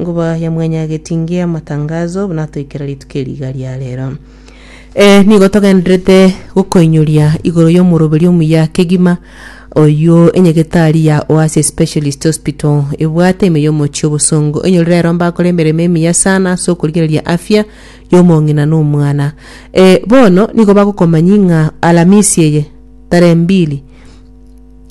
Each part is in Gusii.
Ngoba ya mwenyagetinge amatangazo buna atoikera rituko eri iga ria rero. Eh, nigo togenderete gokoinyoria igoro y'omoroberi omuya kegima oyio enyegetari ya Oasis Specialist Hospital ebwate ime y'omochie obosongo enyorire ero mbakore emeremo emiya sana ase okorigereria afya y'omong'ina na omwana. Eh, bono nigo bagokomanyi ng'a Alamisi eye tarehe mbili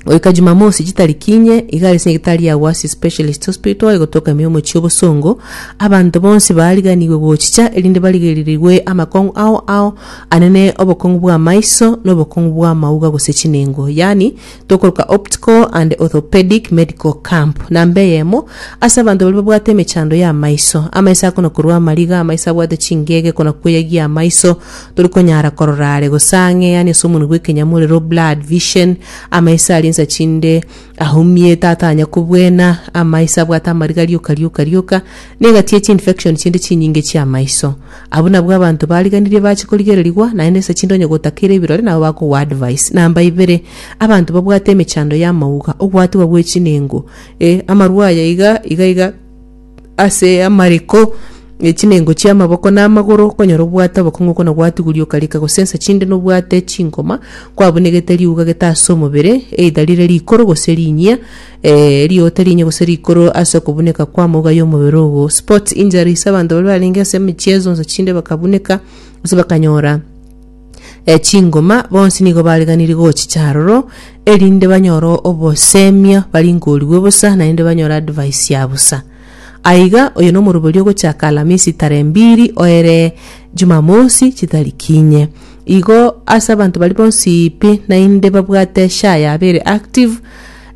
Goika Jumamosi chitariki inye, iga ase nyagetari ya Wasi Specialist Hospital egotoka ime omochie obosongo, abanto bonsi baariganigwe gochicha erinde barigererirwe amakong'u ao ao anene obokong'u bw'amaiso na obokong'u bw'amauga gose chinengo, yaani tokoroka Optical and Orthopedic Medical Camp. Namba eyemo, ase abanto baria babwate emechando y'amaiso, amaiso akona korwa amariga, amaiso abwate chingege, kona kweyagia amaiso, Tori konyara korora are gose ang'e, yaani ase omonwa bw'ekenyamorero, blood vision, amaiso aria ensa chinde ahumie, tatanya kobwena, amaiso abwate amariga rioka rioka rioka, na egati ye chiinfection chinde chinyinge chi'amaiso. Abwo nabwo abanto bariganirie bache korigererigwa, naende ensa chinde onye gotakeire ebirore nabo bakogoa advice. Namba ibere, abanto babwate emechando y'amauga, ogwatigwa gw'echinengo, eh, amarwa aya iga, iga iga, ase amariko, e chinengo chia amaboko na amagoro, okonyora obwate obokong'u okona gwatuguri okarika gosensa chinde nobwate chinkoma, kwabunegete riuga gete ase omobere, either rire rikoro gose rinyia, eh, riota rinyia gose rikoro ase okobuneka kw'amauga y'omobere ogo. Sports injuries, abanto baria barenge ase emechiezo onsi chinde bakabuneka, gose bakanyora E chingoma bonsi nigo bariganirie gochicha aroro, erinde banyore obosemio baringorigwe bosa, naende banyore advice ya bosa. Aiga, oyo nomoroberio ogochaka Alamisi tare mbiri oere Jumamosi chitariki inye. Igo ase abanto baria bonsi pi naende babwate SHA yabo ere active,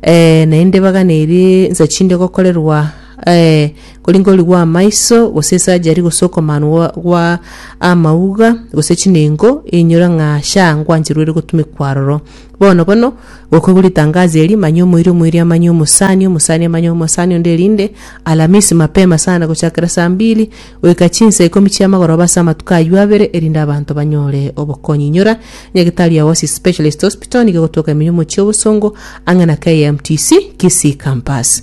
eh, naende baganerie nsa chinde gokorerwa eh, Kori nkori gwa amaiso, gose esajari, gose okomanwa gwa amauga, gose chinengo, inyora ng'a sha ngwancherwa ere gotumekwa aroro. Bono bono, gokwegwa ritangazo eri, manya omoiri, omoiri amanye omosani, omosani amanye omosani onde, erinde Alamisi mapema sana, gochakera saa mbili goika chinsa ikomi chia amagoroba ase amatuko ayio abere, erinde abanto banyore obokonyi. Inyora nyagetari ya Oasis Specialist Hospital nigo egotoka emenyomo chia obosongo ang'e na KMTC, Kisii Campus.